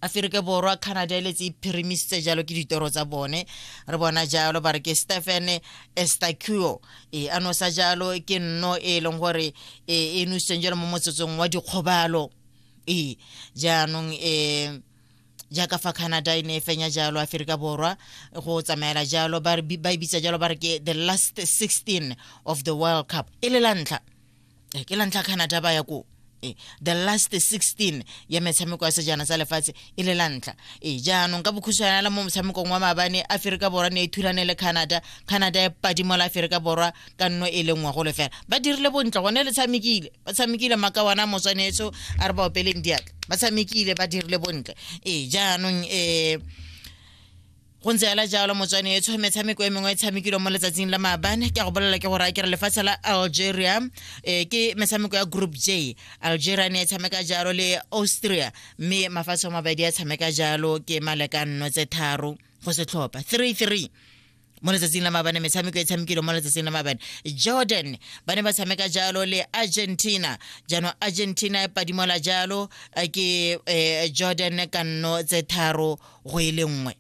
aferika borwa canada le tse iphirimiste jalo ke ditoro tsa bone re bona jalo ba re ke stephen estacuo e a nosa jalo ke nno e e leng gore e, e nositseng jalo mo motsotsong wa dikgobalo e jaanong um jaaka fa canada e ne e fenya jalo aferika borwa go tsamaela jalo ba e bitsa jalo ba re ke the last 16 of the world cup e le la ntlha eh, ke la ntlha canada ba ya koo eh, the last 16 ya metshameko ya sejana sa lefatshe e le la ntlha e jaanong ka bokhutshwana la mo motshamekong wa maabane aferika borwa ne e thulane le canada canada e padimo la aferika borwa ka nno e le nngwe go lefela ba dirile bontle gone le tshamekile ba tshamekile makawana motswanetso a re ba opeleng diatla ba tshamekile ba dirile bontle e jaanong um go ntse ela jalo motswane etsho metshameko e mengwe e tshamekilwe mo letsatsing la maabane ke a go bolela ke gore a kere lefatshe la algeria um ke metshameko ya group j algeria ne e tshameka jalo le austria mme mafatshe a mabedi a tshameka jalo ke malekanno tse tharo go setlhopha three three mo letsatsing la mabane metshameko e tshamekilwe mo letsatsing la mabane jordan ba ne ba tshameka jalo le argentina jaanong argentina e padimola jalo ke um jordan kanno tse tharo go e le nngwe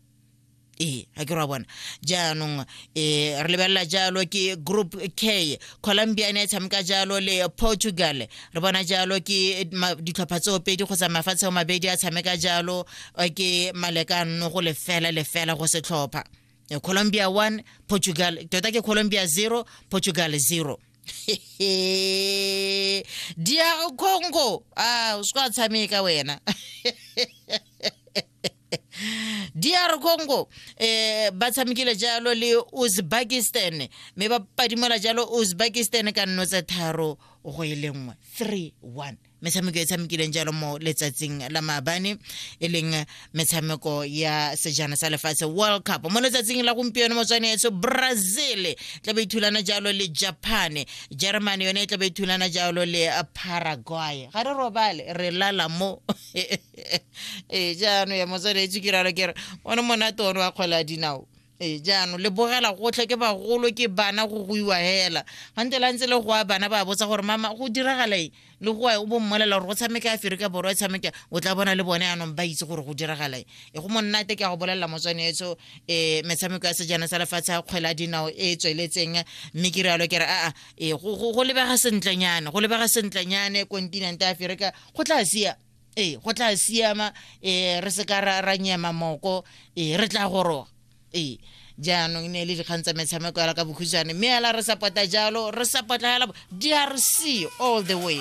ee ga ke ra bona jaanong um re lebelela jalo ke group k colombia e ne e tshameka jalo le portugal re bona jalo ke ditlhopha tseo pedi kgotsa mafatshe o mabedi a tshameka jalo eh, ke maleka nno go lefela lefela go setlhopha eh, colombia one portugal tota ke colombia zero portugal zero dia khongo ah uswatsamika wena DR Congo eh ba tshamekile jalo le Uzbekistan me ba padimola jalo Uzbekistan ka nno tse tharo go ile nngwe 3-1 metshameko e tshamekileng jalo mo letsatsing la maabane e leng metshameko ya sejana sa lefatshe world cup mo letsatsing la gompieno motswaneetso brazil tla be ithulana e jalo le japan germany yone e tla be ithulana e jalo le paraguay ga re robale re lala mo ee jaanong ya motswaneetso ke ralo kere one monate one wa kgwela dinao ee jaanong le bogela gotlhe ke bagolo ke bana go goiwa hela gante la ntse le goa bana ba botsa gore mama go diragalae le goa o bo mmolela gore go tshameke aferika borwa e tshameke o tla bona le bone yanong ba itse gore go diragalae e go monnate ke ya go bolelela motswane etso um metshameko ya sejana sa lefatshe ya kgwela dinao e e tsweletseng mme ke rialo ke re aa e go lebega sentlenyane go lebega sentlenyane kontinente aferika go tla sia ee go tla siama um re se ka ra nyema moko ee re tla goroga ee jaanong ne e le dikgang tsa metshameko yala ka bokhutshwane mme yala re sapota jalo re sapota yala drc all the way